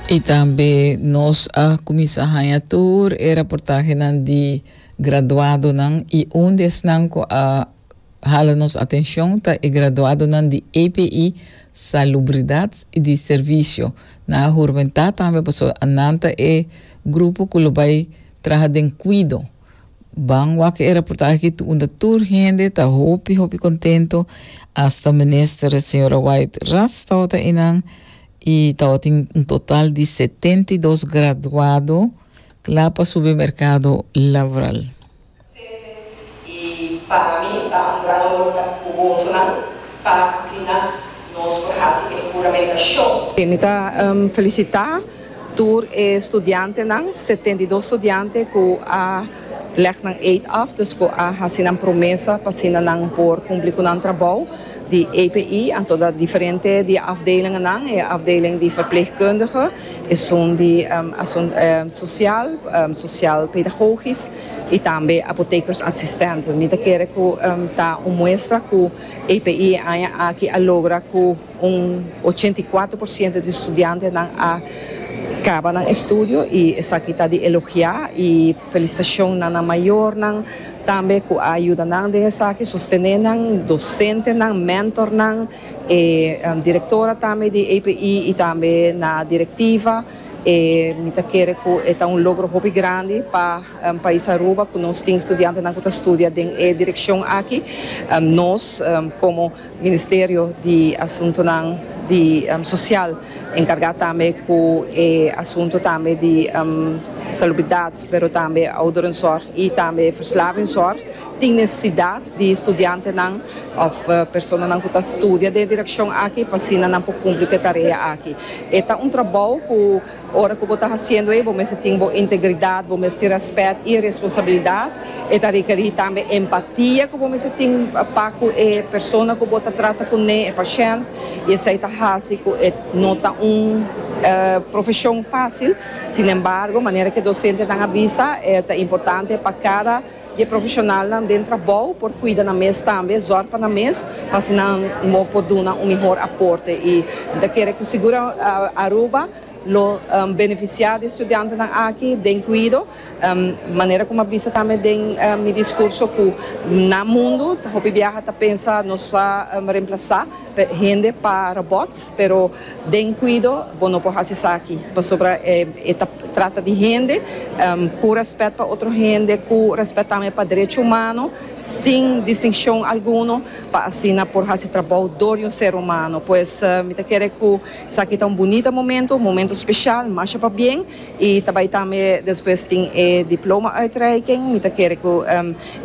Y tambe nos a cuminsa haña tur e raportahenan di graduadonan y un di esnan cu a hala nos atencion ta e graduadonan di EPI Salubridad y di Servicio. Nan a hurmenta tambe pasobra nan ta e grupo cu lo bay traha den cuido Ban wak e raportahe aki unda tur hende ta hopi hopi kontento, asta Minister Señora White ras tawatin einan i tawatin un total di setenta i dos graduado kla pa subi merkado laboral. Sente i pa mi ta un gran honor ta ku bosonan pa asina nos por hasi e huramentacion. Mi ta felicita Tur e studiantenan, setenta i dos studiante ku a lèg nan eet af, dus ku a hasi nan promesa pa asina nan por kumpli ku nan trabou di APE, anto ta diferente di e afdelingennan, e afdeling di verpleegkundige, esun di Asunt Sosial, Sosial Pedagogis i tambe Apotekersassistent. Mi ta kere ku ta un muestra ku APE e aña aki a logra ku. Un ochenta i kuater por siento di studiantenan a kaba nan estudio i esaki ta di elogiá i felisitashon na nan mayornan tambe ku a yuda nan den esaki, sostené nan, dosentenan, mentornan, e direktora tambe di API i tambe na direktiva. Mi ta kere ku e ta un logro hopi grandi pa pais Aruba ku nos tin studiantenan ku ta studia den e direkshon aki. Nos komo. Ministerio di Asuntunan di Sosial enkargá tambe ku e asuntu tambe di salubridat pero tambe ouderenzorg i tambe verslavingzorg tin nesesidat di studiantenan òf personanan ku ta studia den e direkshon aki pa asina nan por kumpli ku e tarea aki. E ta un trabou ku. Ora ku bo ta hasiendo ei, bo mester tin bo integridat, bo mester tin rèspèt i responsabilidat. E ta rekerí tambe empatia ku bo mester tin pa ku e persona ku bo ta trata kuné, e pashènt, i esei ta hasi ku e no ta un profeshon fásil. Sinembargo, manera ku e dosentenan a bisa, e ta importante pa kada. Di e profeshonalnan den trabou por kuida nan mes tambe, zòr pa nan mes pa asinanan bo por duna un mihor aporte i mi ta kere ku sigur Aruba lo benefisiá di e studiantenan aki den kuido manera ku mi a bisa tambe den mi diskurso ku nan mundu hopi biaha ta pensa nos ta remplasá. Hende pa robots pero den cuido bo no por haci esaki pasobra e ta trata di hende cu respet pa otro hende cu respet tambe pa derecho humano sin distincion alguno pa asina por haci trabou door di un ser humano pues mi ta kere cu esaki ta un bunita momento un momento special masha pabien y ta bay tambe despues tin e diploma uitreiking mi ta kere cu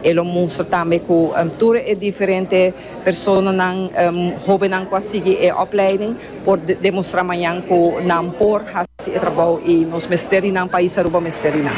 e lo mustra tambe cu tur e diferente. Personanan, hobennan ku a sigui e opleiding por demostrá mañan ku nan por hasi e trabou i nos mester i nan pais Aruba mester i nan.